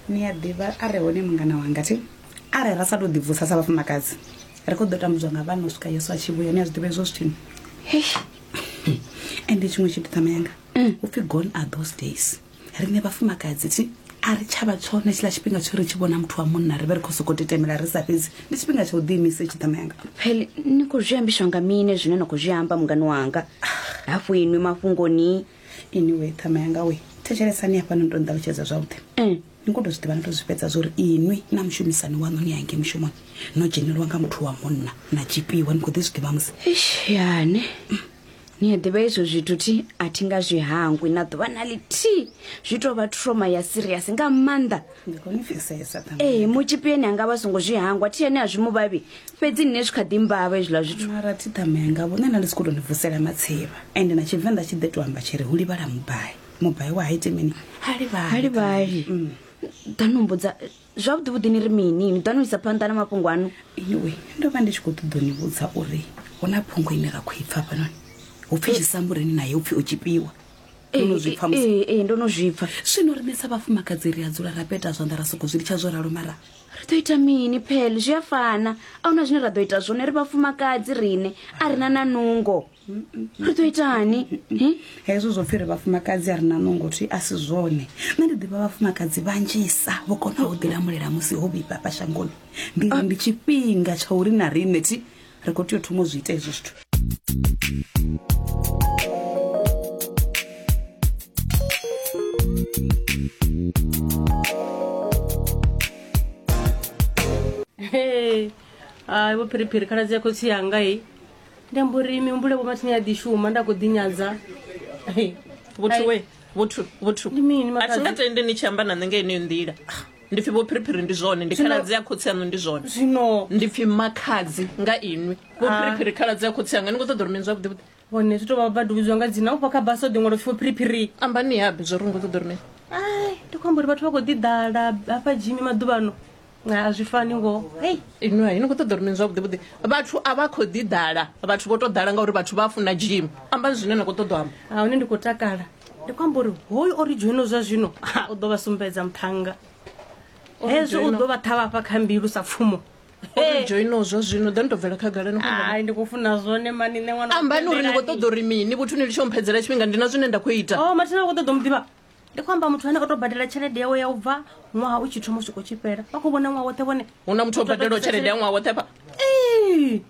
ni a ḓivha a re hone mungana wanga thi arali ra sa tou ḓibvusa sa vhafumakadzi ri khou ḓo tambudzwa nga vhana u swika yesu a tshi vhuya ni a zwi ḓivha hezwo zwithini ende tshiṅwe tshithu ṱama yanga mm. u pfhi gone are those days riṋe vhafumakadzi thi a ri tshavha tshone tshiḽa tshifhinga tsho ri tshi vhona muthu wa munna ri vhe ri khou sokou tetemela ri sa fhedzi ndi tshifhinga tsha u ḓiimisa tshi ṱama yanga pele ni khou zwi ambiswa nga mine zwine na khou zwi amba mungani wanga hafhu inwi mafhungoni inwe ṱhama yanga we thetshelesani hafha ni to nṱalutshedza zwavhuḓi mm. ni kho to zwi ḓivha ni to zwi fhedza zwa uri inwi na mushumisani waṋu ni yange mushumoni no dzhenelwa nga muthu wa munna na tshipiwa ni kho ḓi zwi ḓivha musi yane ni a ḓivha izwo zwithu thi a thi nga zwi hangwi na ḓuvha na ḽithihi zwi tou vha troma ya siriasi nga maanḓa ndi khou ni pfesesa ṱhaṅwe. ee mutshipi ene anga vha songo zwi hangwa thi ene a zwi mu vhavhi fhedzi nṋe zwi kha ḓi mbavha hezwiḽa zwithu mara thi ṱhama yanga vhone na ndi si khou tou ni vusela matsivha ende na tshivenḓa tshi ḓe to amba tshi ri hu livhala mubai mubai wa ha iti mini ha livhali ha livhali Mm. ḓa no mbudza zwavhuḓi vhuḓi ni ri mini ni ḓa no isa phanḓa na mafhungo aṋu anyway ndo vha ndi tshi khou ṱoḓa u ni vhudza uri hu na phungo ine ra khou i pfa hafhanoni hu pfi tshisambuleni naye hu pfi o tshipiwa Ndo no zwi pfa musi- ee ee, ndo no zwi pfa zwino rine sa vhafumakadzi ri a dzula ra peta zwanḓa ra sokou zwi litsha zwo ralo mara ri ḓo ita mini phele zwi a fana a huna zwine ra ḓo ita zwone ri vhafumakadzi rine a ri na na nungo ri ḓo itani Hi? hezwo zwo pfhi ri vhafumakadzi a ri na nungo thi a si zwone nṋe ndi ḓivha vhafumakadzi vhanzhisa vho konaho u ḓilamulela musi ho vhifha fha shangoni ndi ri ndi tshifhinga tsha uri na riṋe thi ri khou tea u thoma u zwi ita hezwo zwithu hai vho phiriphiri khaladzi ya khotsi yanga i ndi amba uri mihumbulo vho mathini ya ḓi shuma nda khou ḓinyadza vhothu we vhothu vhothu ndi mini a thi nga tendi ni tshi amba na nṋe nga yeneyo nḓila ndi pfi vhophiriphiri ndi zwone ndi khaladzi ya khotsi yaṋu ndi zwone zwino ndi pfi makhadzi nga inwi vhophiriphiri khaladzi ya khotsi yanga ni khou ṱoḓa uri mini zwavhuḓi vhuḓi hone zwi to vha vha duvhidzwa nga dzina ufha kha basa o ḓiṅwalo pfi vhophiriphiri ambani yabe zwo ri ni khou ṱoḓa uri mini ai ndi khou amba uri vhathu vha khou ḓi ḓala hafha jimi maḓuvhano a a zwi fani ngoho hei inwi hai ni khou ṱoḓa uri mini zwavhuḓi vhuḓi vhathu a vha khou ḓi ḓala vhathu vho to ḓala ngauri vhathu vha funa jim ambani zwine na khou ṱoḓa u amba a hone ndi khou takala ndi khou amba uri hoyu o ri dzhoino zwa zwino u ḓo vha sumbedza muṱhannga hezwo u ḓo vha ṱhavha fha kha mbilu sa pfumo dzhoino zwa zwino ḓa ni tou bvela khagalani ndi khou funa zwone mani nṋe ṅwana ambani uri ni khou ṱoḓa uri mini vhuthu ni litsho mphedzela tshifhinga ndi na zwine nda khou ita o oh, mathina khou ṱoḓa muḓivha ndi khou amba muthu ane o tou badela tshelede yawe ya u bva ṅwaha u tshi thoma u swika u tshi fhela vha khou vhona ṅwaha woṱhe vhone hu na muthu o badelwa tshelede ya ṅwaha woṱhe fha